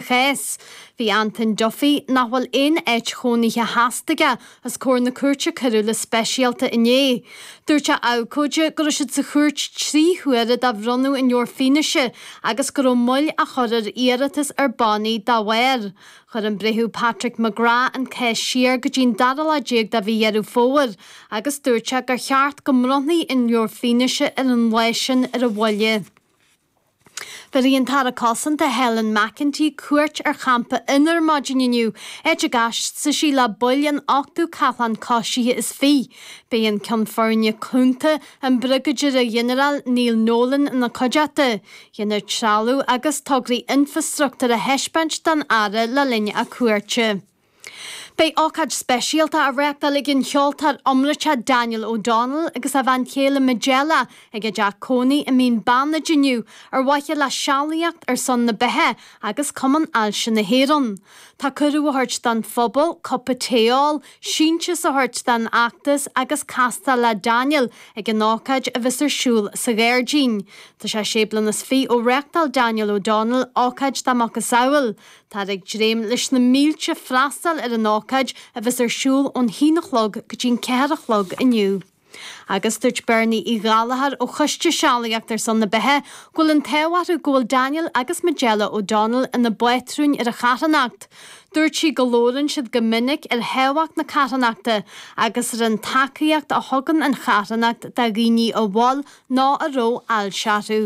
Theas. Bhí Antoin Duffy, nach bhfuil aon áit chónaithe sheasta aige, os comhair na cúirte coiriúla speisialta inné. Dúirt a abhcóide go raibh siad sa chúirt trí huaire do bhronnadh an leabhar fianaise agus go raibh moill á chur ar iarratas ar bannaí dá bharr. Chuir an Breitheamh Patrick McGrath an cás siar go dtí an dara lá déag de mhí Dheireadh Fómhair agus dúirt sé gur cheart go mbronnfaí an leabhar fianaise ar an lá sin ar a mhoille. Tabharfaidh an tAire Cosanta Helen McEntee cuairt ar Champa Fhionnabhair maidin inniu, áit a gcasfaidh sí le baill an 8ú Cathlán Coisithe is Fiche. Beidh an Ceann Foirne Cúnta, an Briogáidire-Ghinearál Neil Nolan ina cuideachta. Dhéanfar trealamh agus tograí infreastruchtúir a thaispeáint don Aire le linn a cuairte. Beidh ócáid speisialta á reáchtáil ag an cheoltóir iomráite Daniel O'Donnell agus a bhean chéile Majella ag a dteach cónaí i Mín Beannaid inniu ar mhaithe le sealaíocht ar son na beatha agus Cumann Ailse na hÉireann. Tá cuireadh á thabhairt don phobal cupa tae a ól, síntiús a thabhairt don fheachtas agus castáil le Daniel ag an ócáid a bheas ar siúl sa ghairdín. Tá sé sé bliana is fiche ó reáchtáil Daniel O'Donnell ócáid dá macasamhail. Táthar ag dréim leis na mílte freastal ar an ócáid a bheas ar siúl ón haon a chlog go dtí'n ceathair a chlog inniu. Agus dúirt Bernie Uí Ghallchóir ó Choiste Sealaíocht ar son na Beatha go bhfuil an t-ádh orthu go bhfuil Daniel agus Majella O'Donnell ina bpátrúin ar an charthanacht. Dúirt sí go labhrann siad go minic ar thábhacht na carthanachta agus ar an tacaíocht a thugann an charthanacht do dhaoine a bhfuil nó a raibh ailse orthu.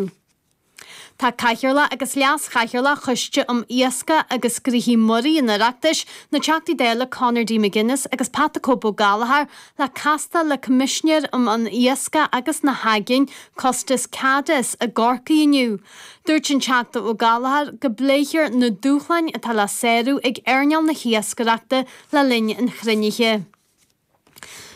Tá Cathaoirleach agus Leas-Chathaoirleach Choiste um Iascaigh agus Gnóthaí Muirí an Oireachtais, na Teachtaí Dála Conor D McGuinness agus Pat the Cope Ó Gallchóir, le casta le Coimisinéir um an Iascach agus na hAigéin, Costas Kadis, i gCorcaigh inniu. Dúirt an Teachta Ó Gallchóir go bpléifear na dúshláin atá le sárú ag earnáil na hIascaireachta le linn an chruinnithe.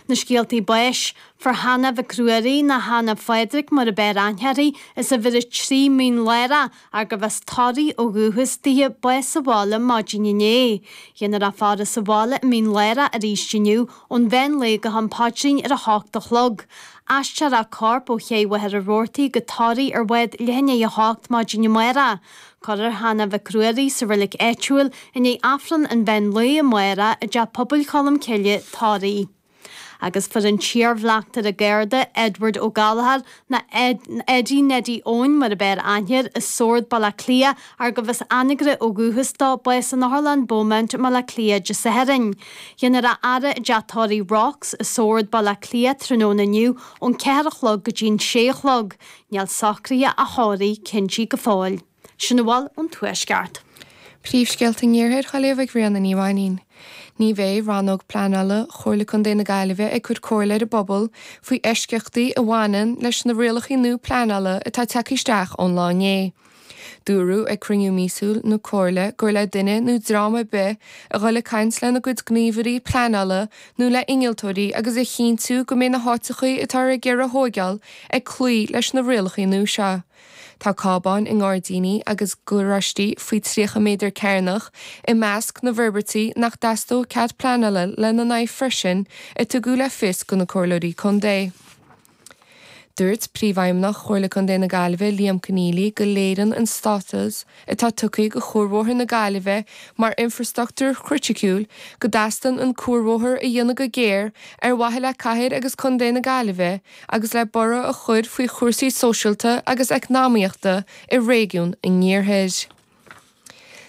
Na scéaltaí báis, fuair Hannah Mhic Ruairí, nó Hannah Phádraig mar ab fhearr aithne uirthi, as uimhir a trí Mín Lárach, arbh as Toraigh ó dhúchas daoithe, bás sa bhaile maidin inné, dhéanfar í a fhaire sa bhaile i Mín Lárach aríst inniu ón mheán lae go ham paidrín ar a hocht a chlog, aistreofar a corp ó chéidh Mhachaire Rabhartaigh go Toraigh ar bhád leath i ndiaidh a hocht maidin amárach. Cuirfear Hannah Mhic Ruairí sa reilig áitiúil i ndiaidh Aifreann an Mheán Lae amárach i dTeach Pobail Cholm Cille, Toraigh. Agus fuair an t-iar-bhleachtaire Garda, Edward Ó Gallchóir, nó Eddie Neddie Eoin mar ab fhearr aithne air, i Sord, Baile Átha Cliath, arbh as Anagaire ó dhúchas dó, bás in Otharlann Beaumont i mBaile Átha Cliath Dé Sathairn. Dhéanfar é a fhaire i dTeach Tórraimh Rocks i Sord, Baile Átha Cliath, tráthnóna inniu ón ceathair a chlog go dtí'n sé a chlog. Níl socruithe a thórraimh cinntithe go fóill. Sin a bhfuil ón Tuaisceart. Príomhscéalta an Iarthair Ghaillimh ag Ríona Ní Mhainín. Ní bheidh Rannóg Pleanála Chomhairle Contae na Gaillimhe ag cur comhairle ar an bpobal faoi eisceachtaí a bhaineann leis na rialacha nua pleanála atá tagtha isteach ón lá inné. Dúradh ag cruinniú míosúil na Comhairle gur le duine nó dream ar bith a dhul ag caint lena gcuid gníomhairí pleanála nó le innealtóirí agus a chinntiú go mbeidh na háiteachaí atáthar ag iarraidh a thóigeáil ag cloí leis na rialachaí nua seo. Tá cábáin i ngairdíní agus garáistí faoi 30 méadar cearnach i measc na bhforbairtí nach dteastódh cead pleanála lena n-aghaidh freisin, a tugadh le fios do na Comhairleoirí Contae. Dúirt Príomhfheidhmeannach Chomhairle Contae na Gaillimhe, Liam Conneely, go léireann an stádas atá tugtha go cuarbhóthar na Gaillimhe mar infreastruchtúr chriticiúil go dteastaíonn an cuarbhóthar a dhéanamh go géar ar mhaithe le cathair agus contae na Gaillimhe agus le borradh a chur faoi chúrsaí sóisialta agus eacnamaíochta i réigiún an iarthair.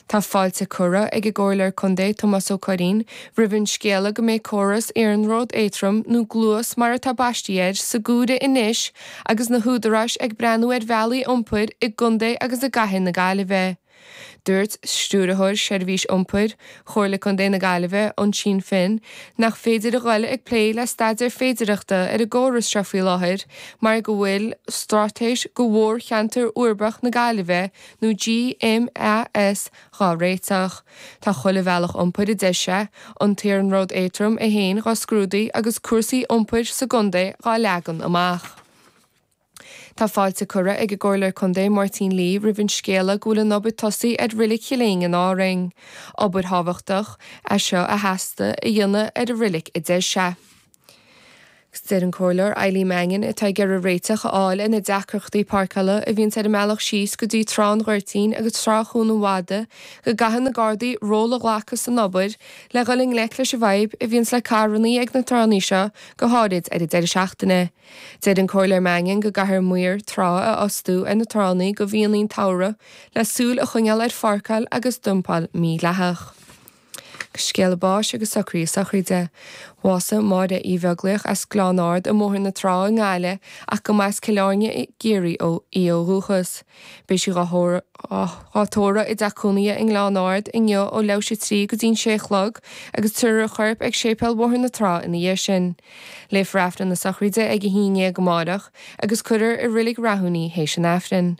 Tá fáilte curtha ag an gComhairleoir Contae Tomás Ó Curraoin roimh an scéala go mbeidh córas iarnróid éadroim, nó Gluas mar atá baistí air, sa gcomhaireamh anois agus na húdaráis ag breathnú ar bhealaí iompair i gContae agus i gCathair na Gaillimhe. Dúirt Stiúrthóir Seirbhís Iompair Chomhairle Contae na Gaillimhe, Uinsinn Finn, nach féidir a dhul ag plé le staidéar féidireachta ar an gcóras seo faoi láthair mar go bhfuil straitéis do mhórcheantar uirbeach na Gaillimhe nó GMAS, dhá réiteach. Tá chuile bhealach iompair a deir sé, an t-iarnród éadrom é fhéin dhá scrúdú agus cúrsaí iompair sa gcondae dhá leagan amach. Tá fáilte curtha ag an gComhairleoir Condae Máirtín Lee roimh an scéala go bhfuil an obair tosaithe ar Reilig Chill Éinne in Árainn. Obair thábhachtach, é seo a theastaigh a dhéanamh ar an reilig a deir sé. Deir an Comhairleoir Eileen Mannion, atá ag iarraidh réiteach a fháil ar na deacrachtaí páirceála a bhíonn ar an mbealach síos go dtí Trá an Ghoirtín agus Trá Chuan an Mhada, go gcaithfidh na Gardaí ról a ghlacadh san obair le dhul i ngleic leis an bhfadhb a bhíonn le carrannaí ag na tránna seo, go háirid ar an deireadh seachtaine. Deir an Comhairleoir Mannion go gcaithfear maoir trá a fhostú ar na tránna go mhíonnaí an tsamhraidh le súil a choinneáil ar pháirceáil agus dumpáil mídhleathach. Scéala báis agus socruithe sochraide. Bhásaigh Máire Uí Bheaglaoich as Gleann Ard i mBóthar na Trá i nGaillimh ach go mba as Cill Airne i gCiarraí í ó dhúchas. Beidh sí dhá tórramh i dteach cónaithe i nGleann Ard inniu ó leathuair théis a trí go dtí'n sé a chlog agus tiúrfar a corp ag Séipéal Bhóthar na Trá ina dhiaidh sin. Léifear Aifreann na Sochraide ag a haon dhéag amáireach agus cuirfear i Reilig Rathúin í théis an Aifrinn.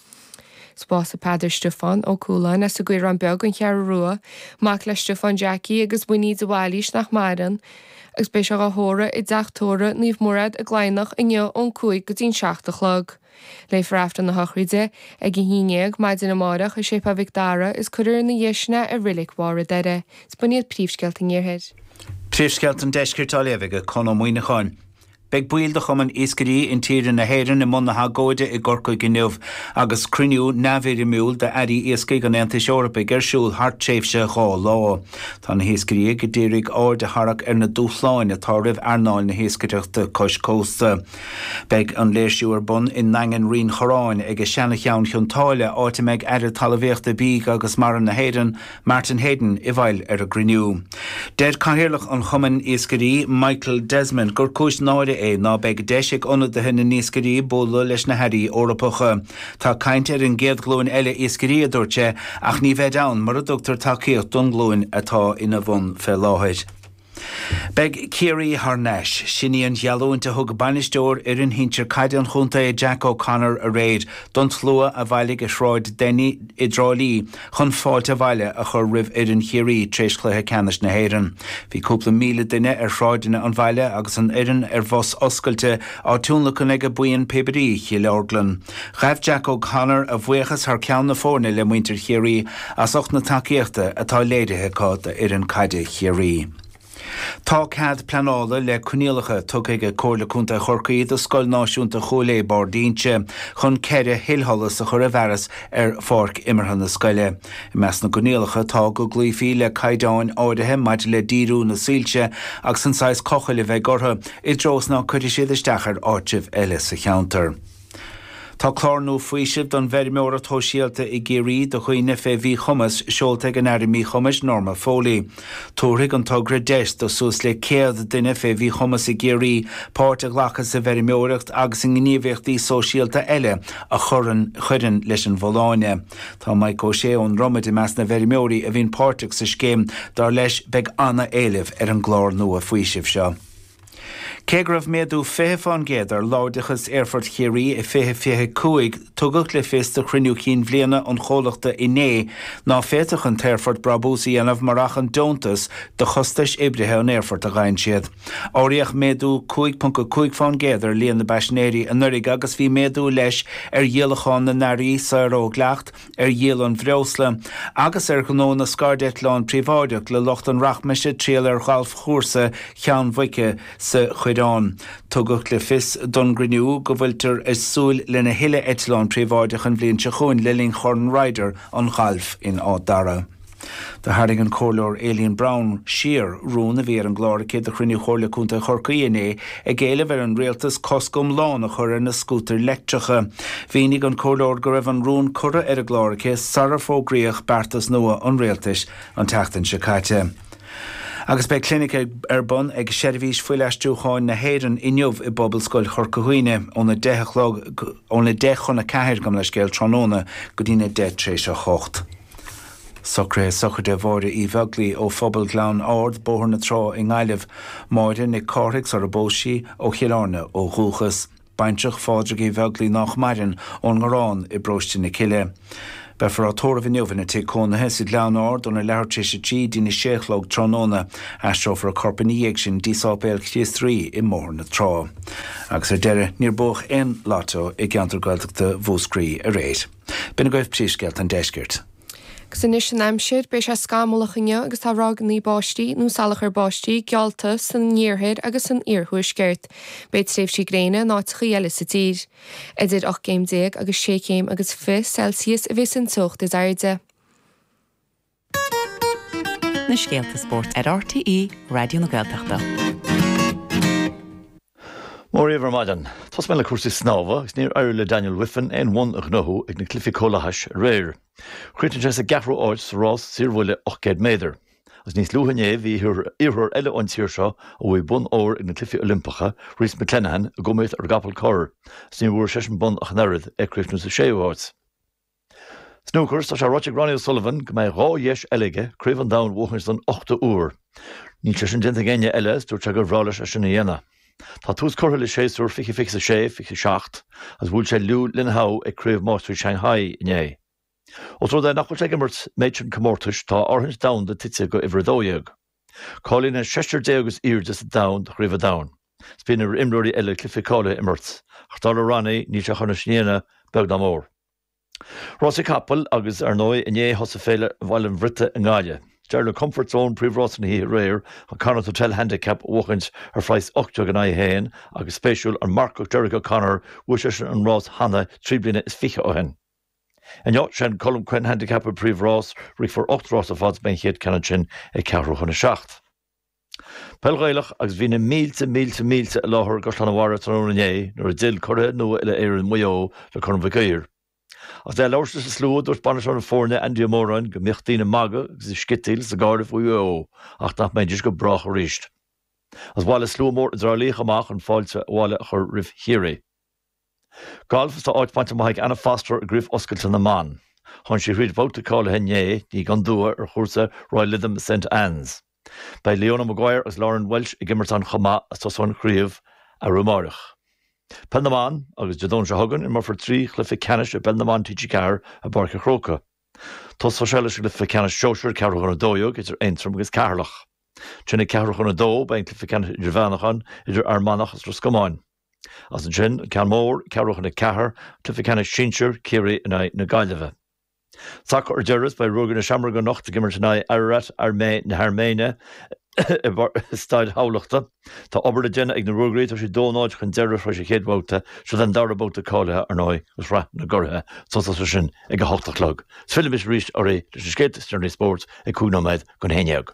Bás Pheadar Stiofán Ó Cualáin as an gCaorán Beag, An Cheathrú Rua, mac le Stiofán Jackie agus Winnie de Bhailís nach maireann, agus beidh sé á thórramh i dTeach Tórraimh Naomh Mairéad i gCladhnach inniu ón cúig go dtí'n seacht a chlog. Léifear Aifreann na Sochraide ag a haon déag maidin amárach i Séipéal Mhic Dara is cuirfear ina dhiaidh sin é i Reilig Bharr an Doire. Is b'in iad príomhscéalta an Iarthair. Príomhscéalta an Deiscirt á léamh ag Conn Ó Muíneacháin. Beidh baill de Chumann Iascairí Intíre na hÉireann i mbun agóide i gCorcaigh inniu agus cruinniú neamhfhoirmiúil d'Airí Iascaigh an Aontais Eorpaigh ar siúl thar tréimhse dhá lá. Tá na hiascairí a d'iarraidh aird a tharrac ar na dúshláin atá roimh earnáil na hiascaireachta cois cósta. Beidh an léirsiú ar bun i nDaingean Rinn Chorráin, ag a seana-cheann Chionn tSáile, áit a mbeidh Aire Talamhaíochta, Bídh agus Mara na hÉireann, Martin Heydon i bhfeighil ar an gcruinniú. Deir Cathaoirleach an Chumainn Iascairí, Michael Desmond, gur cúis náire é ná beidh deis ag ionadaithe na n-iascairí bualadh leis na hAirí Eorpacha. Tá caint ar an gcéad ghlúin eile iascairí, a dúirt sé, ach ní bheid ann mura dtugtar tacaíocht don nglúin atá ina bhun fé láthair. Beidh Ciarraí thar nais. Sin í an gheallúint a thug bainisteoir fhoireann shinsir caide an chontae, Jack O'Connor, aréir don tslua a bhailigh i Sráid Denny i dTrá Lí chun fáilte abhaile a chur roimh fhoireann Chiarraí tar éis chluiche ceannais na hÉireann. Bhí cúpla míle duine ar shráideanna an bhaile agus an fhoireann ar bhus oscailte á tionlacan ag Buíon píobairí Chill Orglan. Ghabh Jack O'Connor a bhuíochas thar ceann na foirne le muintir Chiarraí as ucht na tacaíochta atá léirithe acu d'fhoireann caide Chiarraí. Tá cead pleanála le coinníollacha tugtha ag Comhairle Contae Chorcaí do Scoil Náisiúnta Chúil Aodha Barr d'Ínse chun ceithre thuilsholas a chur i bhfearas ar pháirc imeartha na scoile. I measc na gcoinníollacha tá go gcloífí le caighdeáin áirithe maidir le díriú na soilse agus an saghas cochaill a bheidh orthu, i dtreo is ná cuirfidh siad isteach ar áitribh eile sa cheantar. Tá clár nua faoisimh don bhfeirmeoireacht shóisialta i gCiarraí do dhaoine fé mhíchumas seolta ag an Aire Míchumais, Norma Foley. Tabharfaidh an togra deis do suas le 100 duine fé mhíchumas i gCiarraí páirt a ghlacadh sa bhfeirmeoireacht agus i ngníomhaíochtaí sóisialta eile a chuireann leis an bhfolláine. Tá Mike O'Shea ón Dromaid i measc na bhfeirmeoirí a bhíonn páirteach sa scéim. Dar leis, beidh an-éileamh ar an gclár nua faoisimh seo. Cé go raibh méadú 20 fán gcéad ar láimhdeachas Aerfort Chiarraí i 2025, tugadh le fios do chruinniú chinn bhliana an chomhlachta inné ná féadfadh an t-aerfort brabús a dhéanamh murach an deontas do chostais oibrithe an aerfoirt a dhein siad. Áiríodh méadú 5.5 fán gcéad ar líon na bpaisinéirí anuraidh agus bhí méadú leis ar dhíolachán na n-earraí saor ó dhleacht, ar dhíol an bhreosla agus ar ghnó na scairdeitleán príobháideach le lucht an rachmais ag triall ar ghalfchúrsa Cheann Mhuice sa Choireán. Tugadh le fios don gcruinniú go bhfuiltear ag súil lena thuilleadh eitleán príobháideach an bhliain seo chugainn le linn Chorn Ryder an ghailf in Áth Dara. Do tharraing an Comhairleoir Aileen Browne siar rún a bhí ar an gclár aici do chruinniú Chomhairle Contae Chorcaí inné ag éileamh ar an Rialtas cosc iomlán a chur ar na scútair leictreacha. Mhínigh an Comhairleoir go raibh an rún curtha ar an gclár aici sara fógraíodh beartas nua an Rialtais an tseachtain seo caite. Agus beidh clinic ar bun ag Seirbhís Fuilaistriúcháin na hÉireann inniu i bPobalscoil Chorca Dhuibhne óna deich a chlog, óna deich chun a ceathair, gabh mo leithscéal, tráthnóna go dtína deich tar éis a hocht. Socraithe sochraide Mháire Uí Bheaglaoi ó Phobal Ghleann Ard, Bóthar na Trá i nGaillimh. Máire Nic Cárthaigh sarar phós sí, ó Chill Airne ó dhúchas. Baintreach Phádraig Uí Bheaglaoi nách maireann, ón nGarrán i bParóiste na Cille. Beifear á tórramh inniu ina tigh cónaithe sa Ghleann Ard óna leathuair tar éis a trí dtín a sé a chlog tráthnóna. Aistreofar a corp ina dhiaidh sin dtí Sáipéal Chríost Rí i mBóthar na Trá. Agus ar deireadh, níor buadh aon Lotto i gceantar Gaeltachta Mhúscraí aréir. B'in agaibh príomhscéalta an deiscirt. Agus anois an aimsir. Beidh sé scamallach inniu agus tá ráigeanna báistí, nó salachar báistí, geallta san iarthar agus san iarthuaisceart. Beidh tréimhsí gréine in áiteachaí eile sa tír. Idir ocht gcéim déag agus sé chéim agus fiche Celsius a bheas an teocht is airde. Na scéalta spóirt ar RTÉ Raidió na Gaeltachta. Mora dhaoibh ar maidin. Tosóidh mé le cúrsaí snámha agus níor éirigh le Daniel Wiffen aon bhonn a ghnóthú ag na Cluichí Comhlathais aréir. Chríochnaigh sé sa gceathrú áit sa rás saorbhuille 800 méadar. Agus níos luaithe inné bhí iarrthóir eile ón tír seo a bhuaigh bonn óir ag na Cluichí Oilimpeacha, Rhys McClenaghan, ag iomaíocht ar an gcapall corr, agus níor bhuaigh seisean bonn ach an oiread, é ag críochnú sa séú háit. Snúcar, Tá sé ráite ag Ronnie O'Sullivan go mbeidh dhá dheis eile aige Craobh an Domhain a bhuachaint don ochtú uair. Níl sé sin déanta ag éinne eile agus dúirt sé gur bhreá leis é sin a dhéanamh. Tá tús curtha le séasúr fiche fiche a sé, fiche a seacht agus bhuail sé Liu Linhao ag Craobh Máistrí Shanghai inné. Os rud é nach bhfuil sé ag imirt méid sin comórtais, tá a fhorthaint domhanda tite go uimhir a dó dhéag. Cáilíonn an seisear déag is airde sa domhan do Chraobh an Domhain. Is bíonn ar imreoirí eile cluichí cáilithe a imirt, ach dar le Ronnie níl sé chun é sin a dhéanamh beag ná mór. Rásaí capall agus, ar ndóigh, inné thosaigh Féile Bhaile an Bhriotaigh i nGaillimh. D'éirigh le Comfort Zone príomhrás na hoíche aréir an Connacht Hotel Handicap a bhuachaint ar phraghas 18 in aghaidh 1 agus spéisiúil an marcach Derek O'Connor bhuaigh seisean an rás cheana trí bliana is fiche ó shin. Inniu sé an Colm Quinn Handicap an príomhrás, rithfear ocht rás ar fad is beidh an chéad ceann ansin ag ceathrú chun a seacht. Peil Ghaelach agus bhí na mílte, mílte, mílte i láthair i gCaisleán an Bharraigh tráthnóna inné nuair a d'fhill curaidh nua uile-Éireann Mhaigh Eo le Corn Mhic Uidhir. Agus é ag labhairt leis an slua, dúirt bainisteoir na foirne, Andy Ó Móráin, go mbíodh daoine ag magadh agus ag sciotaíl agus ag gáire faoi Mhaigh Eo ach nach mbeidís go brách arís. Agus bhailigh slua mór i dTrá Lí chomh maith le fáilte abhaile a chur roimh Chiarraí. Galf Is tá áit bainte amach ag Anna Foster i gCraobh Oscailte na mBan. Tháinig sí thríd bhabhta cáilithe inné, ní gan dua, ar chúrsa Royal Lytham Saint Anne's. Beidh Leona Maguire agus Lauren Welsh ag imirt ann chomh maith is tosóidh an chraobh arú amáireach. Peil na mBan Agus Dé Domhnaigh seo chugainn, imreofar trí chluiche ceannais i bPeil na mBan TG4 i bPáirc an Chrócaigh. Tosóidh sé leis an gcluiche ceannais sóisir, ceathrú chun a dó dhéag, idir Aontroim agus Ceatharlach. Ansin ag ceathrú chun a dó, beidh an cluiche ceannais idirmheánach ann, idir Fhear Manach agus Ros Comáin. Is ansin an ceann mór, ceathrú chun a ceathair, Cluiche Ceannais Sinsir, Ciarraí in aghaidh na Gaillimhe. Sacar ar deireadh, beidh Ruagairí na Seamróige anocht ag imirt in aghaidh Ararat na hAirméine i Staid Thamhlachta. Tá obair le déanamh ag na Ruagairí, tá siad dó nóid chun deireadh tar éis an chéad bhabhta, seo é an dara babhta cáilithe, ar ndóigh, do Shraith na gCuradh. Tosóidh sé sin ag a hocht a chlog. Is fillfimid arís oraibh leis na scéalta is deireanaí spóirt ag cúig nóiméad chun haon dhéag.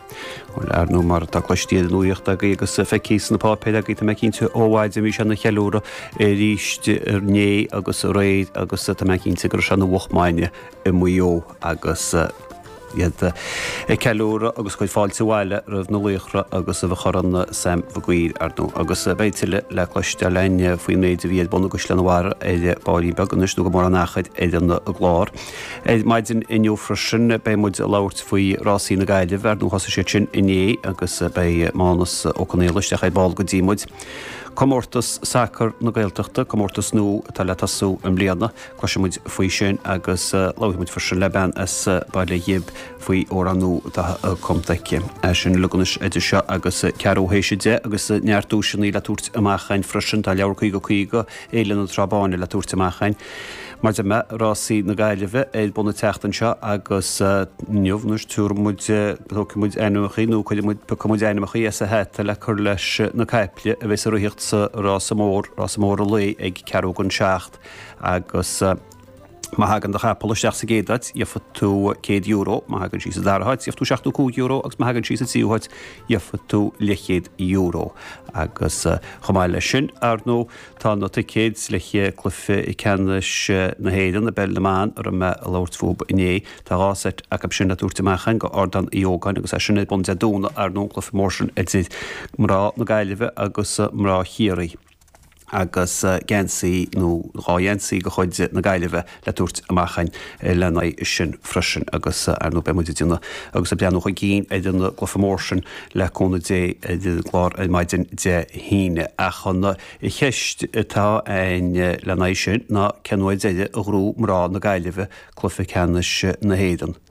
Ar ndóigh mar atá cloiste ar an nuaíocht agaí agus feicthe sna páipéir agaí, tá mé cinnte, ó mhaidin bhí sé ina cheiliúradh arís inné agus aréir agus tá mé cinnte go raibh sé ina mhoch maidne i Maigh Eo agus iad ag ceiliúradh agus ag cur fáilte abhaile roimh na laochra agus roimh Chorn Sam Maguire ar ndóigh. Agus beidh tuilleadh le cloisteáil againn faoin méid a bhí ar bun i gCaisleán an Bharraigh ar baillín beag anois nó go mór an t-achar ar an gclár. Ar maidin inniu freisin beidh muid ag labhairt faoi Rásaí na Gaillimhe, ar ndóigh thosaigh siad sin inné agus beidh Mánus Ó Conghaile isteach ar ball go dtí muid. Comórtas sacar na Gaeltachta, comórtas nua atá le tosú i mbliana, cloisfidh muid faoi sin agus labhróidh muid freisin le bean as Baile Ghib faoi amhrán nua atá cumta aici. É sin uilig anois idir seo agus ceathrú tar éis a deich agus neart duaiseanna le tabhairt amach againn freisin, tá leabhar cúig ó cúig ó Fhéile na Trá Báine le tabhairt amach againn. Mar a deir mé, rásaí na Gaillimhe ar bun an tseachtain seo agus inniu, anois, tabharfaidh muid, tógfaidh muid ainmneacha, nó cuirfidh muid, piocfaidh muid ainmneacha as an hata le cur leis na caiple a bheidh ag ritheacht sa rása mór, rása mór an lae ag ceathrú don seacht agus, Má thagann do chapall isteach sa gcéad áit, gheobhaidh tú céad euro, má thagann sí sa dara háit, gheobhaidh tú seachtó cúig euro agus má thagann sí sa tríú háit, gheobhaidh tú leithchéad euro. Agus chomh maith leis sin, ar ndóigh, tá na ticéid le haghaidh Cluiche Ceannais na hÉireann i bPeil na mBan a raibh mé ag labhairt fúthu inné. Tá dhá sheit acu sin le tabhairt amach againn go Ardán Uí Ógáin agus é sin ar bun Dé Domhnaigh, ar ndóigh, an cluiche mór sin idir mná na Gaillimhe agus mná Chiarraí. agus geansaí nó dhá gheansaí de chuid na Gaillimhe le tabhairt amach againn lena aghaidh sin freisin agus, ar ndóigh, beidh muid ag déanamh agus ag breathnú chun cinn ar an gcluiche mór sin, le cúnamh Dé, ar an gclár ar maidin Dé hAoine. Ach an cheist atá ann lena aghaidh sin ná cén uair deiridh a ghnóthaigh mná na Gaillimhe cluiche ceannais na hÉireann?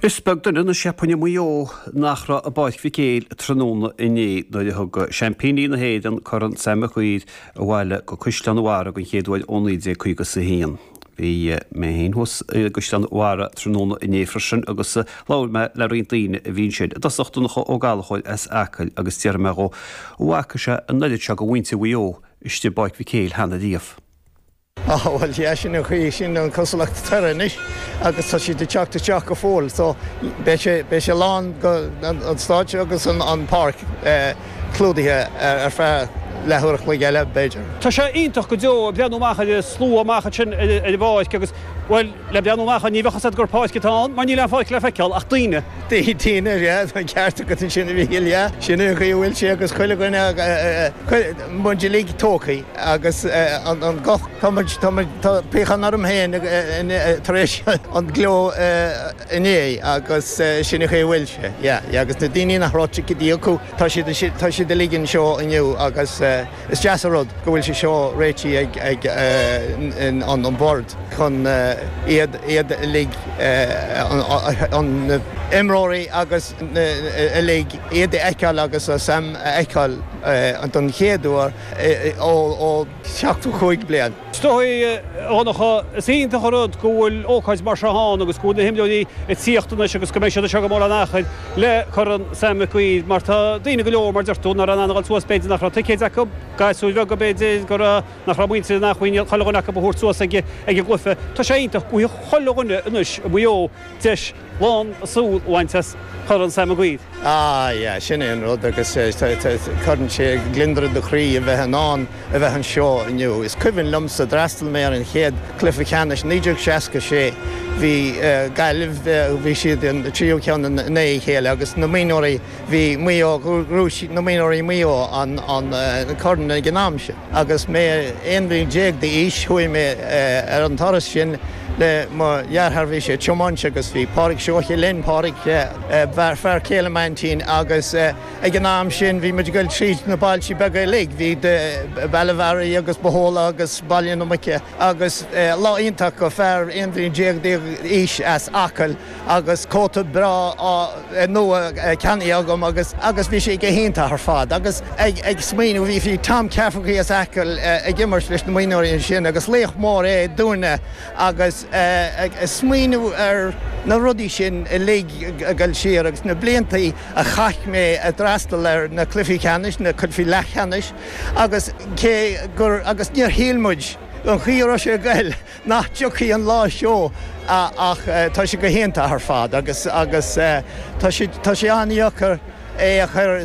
Is beag duine na Seapáine i Maigh Eo nach raibh i bPáirc Mhic Éil tráthnóna inné nuair a thug seaimpíní na hÉireann Corn Sam Mhic Uidhir abhaile go Caisleán an Bharraigh den chéad uair ó 1951. Bhí mé féin thuas i gCaisleán an Bharraigh tráthnóna inné freisin agus labhair mé le roinnt daoine a bhí ansin, i dtosach Donncha Ó Gallchóir as Acaill agus d'fhiafraigh mé dhó an bhfaca sé an oiread seo de mhuintir Mhaigh Eo istigh i bPáirc Mhic Éil cheana riamh. Á, bhuel, sea, sin an chaoi, sin an cosúlacht atá air anois agus tá siad ag teacht isteach go fóill so beidh sé, beidh sé lán go, an stáitse agus an pháirc clúdaithe ar feadh leathuair a chloig eile, b'fhéidir. Tá sé iontach go deo breathnú amach ar an slua amach ansin ar an bpáirc agus, bhuel, le breathnú amach ann, ní bheadh 'fhios a't gur páirc atá ann mar níl aon pháirc le feiceál ach daoine. Daoine, ar fad, an ceart agat ansin, a Mhicil, yeah. Sin é an chaoi a bhfuil sé agus chuile dhuine, muid uilig tógtha agus an guth, tá muid, tá muid, tá piachán orm féin tar éis an gleo inné agus sin é chaoi a bhfuil sé, yeah, yeah. Agus na daoine nach raibh ticéidí acu, tá siad, tá siad uilig anseo inniu agus. Is deas an rud go bhfuil sé seo réitithe ag an mBord chun iad uilig, na h-imreoirí agus uilig, iad a fheiceáil agus Sam a fheiceáil don chéad uair ó sheachtó cúig bliain. Is dóigh, a Dhonncha, is iontach an rud go bhfuil ócáid mar seo ann agus go bhfuil na himreoirí ag tíocht anois agus go mbeidh siad anseo gan mórán achair le corn Sam Mhic Uidhir mar tá daoine go leor, mar a deir tú, nach raibh in ann a ghoil suas, b'fhéidir nach raibh ticéid acu, gasúir bheaga b'fhéidir go raibh, nach raibh a muintir in acmhainn chuile dhuine acu a thabhairt suas ag an gcluiche. Tá sé iontach, go bhfaighidh chuile dhuine anois i Maigh Eo deis. lán a súl a bhaint as Corn Sam Mhic Uidhir. Ah yeah, sin é an rud agus cuireann sé gliondar ar do chroí a bheith in ann a bheith anseo inniu. Is cuimhin liomsa, d'fhreastal mé ar an chéad cluiche ceannais 1966, bhí Gaillimh, bhí siad an tríú ceann i ndiaidh a chéile agus na mionúirí, bhí Maigh Eo, ghnóthaigh na mionúirí Maigh Eo an corn ag an am sin. Agus mé 11 bliain d'aois chuaigh mé ar an turas sin le mo dheartháir, bhí sé ag tiomáint agus bhí Pádraig Seoighe linn, Pádraig, fear céile m'aintín agus ag an am sin bhí muid ag goil tríd na bailtí beaga uilig, bhí Béal Átha Bhearaigh agus Bohola agus Béal Átha na Muice agus lá iontach do fear 11 bliain d'aois as Acaill. agus cóta breá nua ceannaithe agam agus agus bhí sé go hiontach ar fad agus ag ag smaoineamh bhí bhí Tom Cafferkey as Acaill ag imirt leis na mionúirí ansin agus laoch mór é dúinne agus ag smaoineamh ar na rudaí sin uilig ag goil siar agus na blianta a chaith mé ag freastal ar na cluichí ceannais na cluichí leathcheannais agus cé gur agus níor shíl muid an chaoi a raibh sé ag goil nach dtiocfadh an lá seo ach tá sé go hiontach ar fad agus agus tá sé an-dheacair é a chur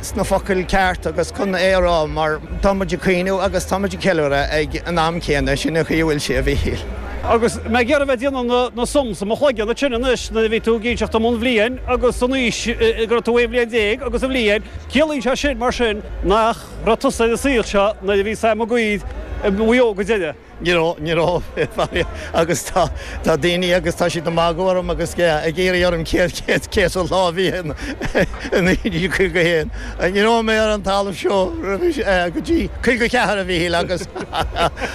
sna focail cearta agus chun é a rá mar tá muid ag caoineadh agus tá muid ag ceiliúradh ag an am céanna, sin an chaoi a bhfuil sé a Mhichíl. Agus mé ag iarraidh a bheith ag déanamh na sums i mo chloigeann, ansin anois nuair a bhí tú ag inseacht dom an bhliain agus an aois go raibh tú aon bhliain déag agus an bhliain, ciallaíonn sé sin mar sin nach raibh tusa ar an saol seo nuair a bhí Sam Mac Uidhir i Maigh Eo go deireadh? Ní raibh, ní raibh, a Mhichíl, agus tá, tá daoine agus tá siad ag magadh orm agus ag iarraidh orm cén, cén, cén sórt lá a bhí in, in 1951. Ní raibh mé ar an talamh seo roimh is, eh, go dtí 54, a Mhichíl, agus,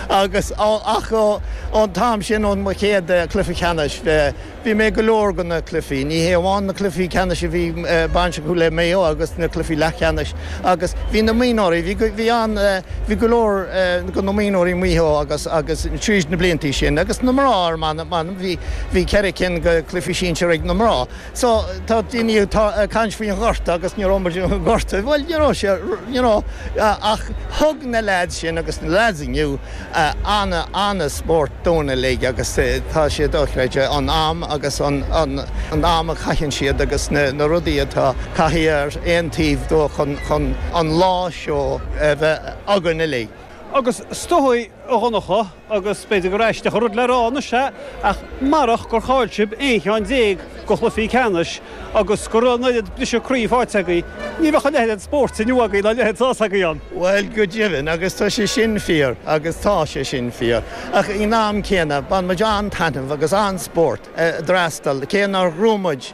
agus, ó, ach ó, ón t-am sin, ón mo chéad, eh, cluiche ceannais, eh, Bhí mé ag go leor de na cluichí. Ní hé amháin na cluichí ceannais a bhí baint acu le Maigh Eo agus na cluichí leathcheannais agus bhí na mionúirí, bhí, bhí ann, bhí go leor de na mionúirí Mhaigh Eo agus, agus tríd na blianta sin agus na mná ar m'anam, m'anam, bhí, bhí ceithre cinn de chluichí sinsir ag na mná. So, tá daoine atá ag caint faoin ghorta agus ní raibh muid i ngorta. Bhuel, ní raibh sé, you know, ach thug na leaids sin agus na leaids inniu, an- an-spórt dúinn uilig agus tá sé dochreidte an am agus an am a chaitheann siad agus na rudaí atá caithe ar aon taobh dóibh chun chun an lá seo a bheith againn uilig. Agus is dóigh a Dhonncha agus b'fhéidir gur aisteach an rud le rá anois é ach marach gur chaill sibh aon cheann déag go chluichí ceannais Agus go raibh an oiread briseadh croí faighte agaibh, ní bheadh a leithéid de spórt inniu agaibh ná a leithéid de shásamh agaibh ann. Bhuel, go deimhin, agus tá sé sin fíor, agus tá sé sin fíor. Ach ag an am céanna, bhain muid an-taitneamh agus an-spórt ag freastal, cé nár ghnóthaigh muid,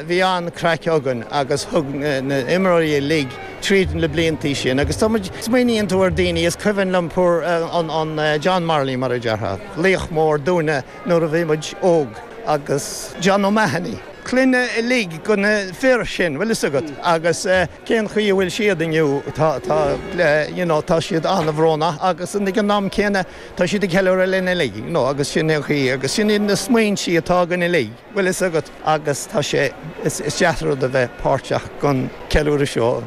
bhí an-craic againn agus thug na imreoirí uilig tríd na bliantaí sin agus tá muid, smaoiníonn tú ar daoine, is cuimhin liom poor old John Morley mar a déarfá, laoch mór dúinne Nuair a bhí muid óg agus John O'Mahony. Clanna uilig de na fir sin, bhfuil fhios agat, agus cén chaoi a bhfuil siad inniu, tá, tá, you know, tá siad an-bhrónach agus ag an am céanna tá siad ag ceiliúradh linn uilig, you know, agus sin é an chaoi agus sin iad na smaointí atá againn uilig, bhfuil fhios agat, agus tá sé, is, is deas an rud a bheith páirteach sa ceiliúradh seo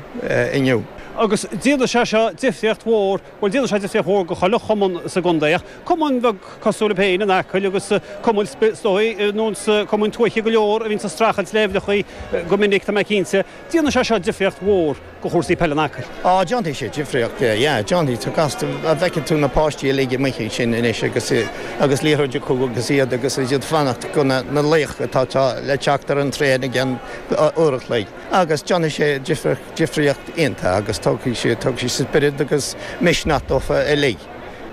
inniu. Agus déanann sé seo difríocht mhór Bhuel, déanann sé difríocht mhór do chuile chumann sa gcontae, ach cumainn bheag cosúil libh féin in Acaill agus cumainn sp, is dóigh, na cumainn tuaithe go leor a bhíonns ag streachailt le uimhreachaí go minic, tá mé cinnte, déanann sé seo difríocht mhór do chúrsaí peile in Acaill. Á, déanfaidh sé difríocht, yeah, déanfaidh, tá's agat, feicfidh tú na páistí uilig amuigh ansin anois agus, agus liathróidí acu agus iad, agus iad ag fanacht do na, na laoch atá, atá le teacht ar an traein i gceann uair a chloig agus déanfaidh sé difríocht. difríocht iontach agus tógfaidh siad, tógfaidh siad spiorad agus misneach dófa uilig.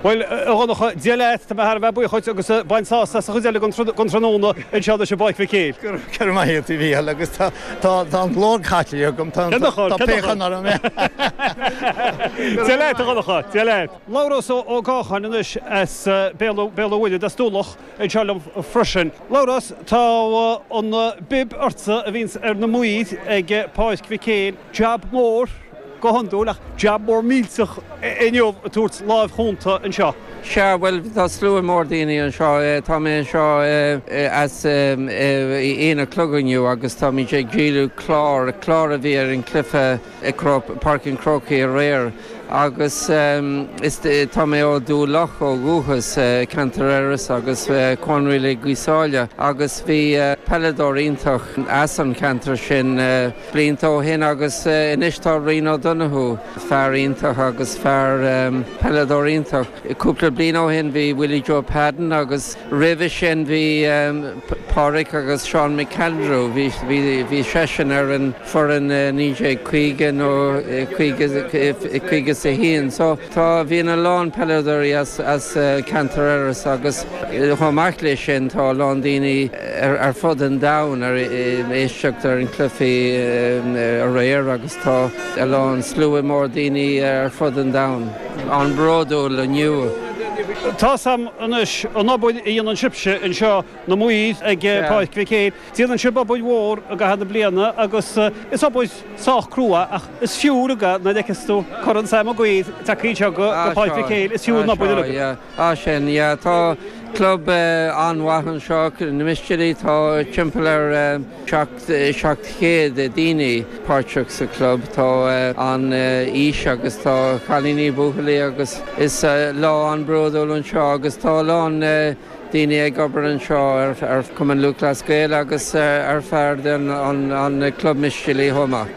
Bhuel, a Dhonncha, Dia leat, tá mé thar a bheith buíoch dhuit agus bain sásamh as an chuid eile den tráthnóna anseo i bPáirc Mhic Éil. Go raibh maith agat, a Mhícheál, agus tá an glór caite agam, tá piachán orm. Dia leat, a Dhonncha, Dia leat. Labhrás Ó Gacháin anois as Béal an Mhuirthead, as Dumha Locha. Anseo liom freisin. Labhrás, Tá an bib ortsa a bhíonns ar na maoir ag Páirc Mhic Éil. Jab mór, go hiondúil, ach jab mór millteach inniu ag tabhairt lámh chúnta anseo. Sea, bhuel, tá slua mór daoine anseo. Tá mé anseo as aon a chlog inniu agus táimid ag díol clár, clár a bhí ar an cluiche. ag Páirc an Chrócaigh aréir agus tá mé ó Dhumha Locha ó dhúchas, ceantar Iorras agus Cuan Oilí, Gaoth Sáile agus bhí peileadóir iontach as an cheantar sin blianta ó shin agus anois tá Ryan O'Donoghue, fear iontach agus fear, peileadóir iontach. Cúpla bliain ó shin bhí Willie Joe Padden agus roimhe sin bhí Pádhraic agus Seán McAndrew, bhí seisean ar an foireann i 1950 nó 51. So tá, bhíonn a lán peileadóirí as ceantar Iorras agus chomh maith leis sin tá a lán daoine ar fud an domhain ag éisteacht ar an cluichí aréir agus tá a lán, slua mór daoine ar fud an domhain. an-bhródúil inniu. Tá's a'm anois an obair a dhéanann sibhse anseo na maoir ag Páirc Mhic Éil. Déanann sibh obair mhór i gcaitheamh na bliana agus is obair sách crua ach is fiú é nuair a fheiceas tú Corn Sam Maguire ag teacht anseo go Páirc Mhic Éil. Is fiú an obair uilig. Ah sin, yeah, tá club an-mhaith anseo, na Mistéalaigh, tá timpeall ar seacht, seacht chéad daoine páirteach sa club, tá faoi aois agus tá cailíní, buachaillí agus is lá an-bródúil anseo agus tá a lán daoine ag obair anseo ar Chumann Lúthchleas Gael agus ar, for an club Mistéalaigh chomh maith.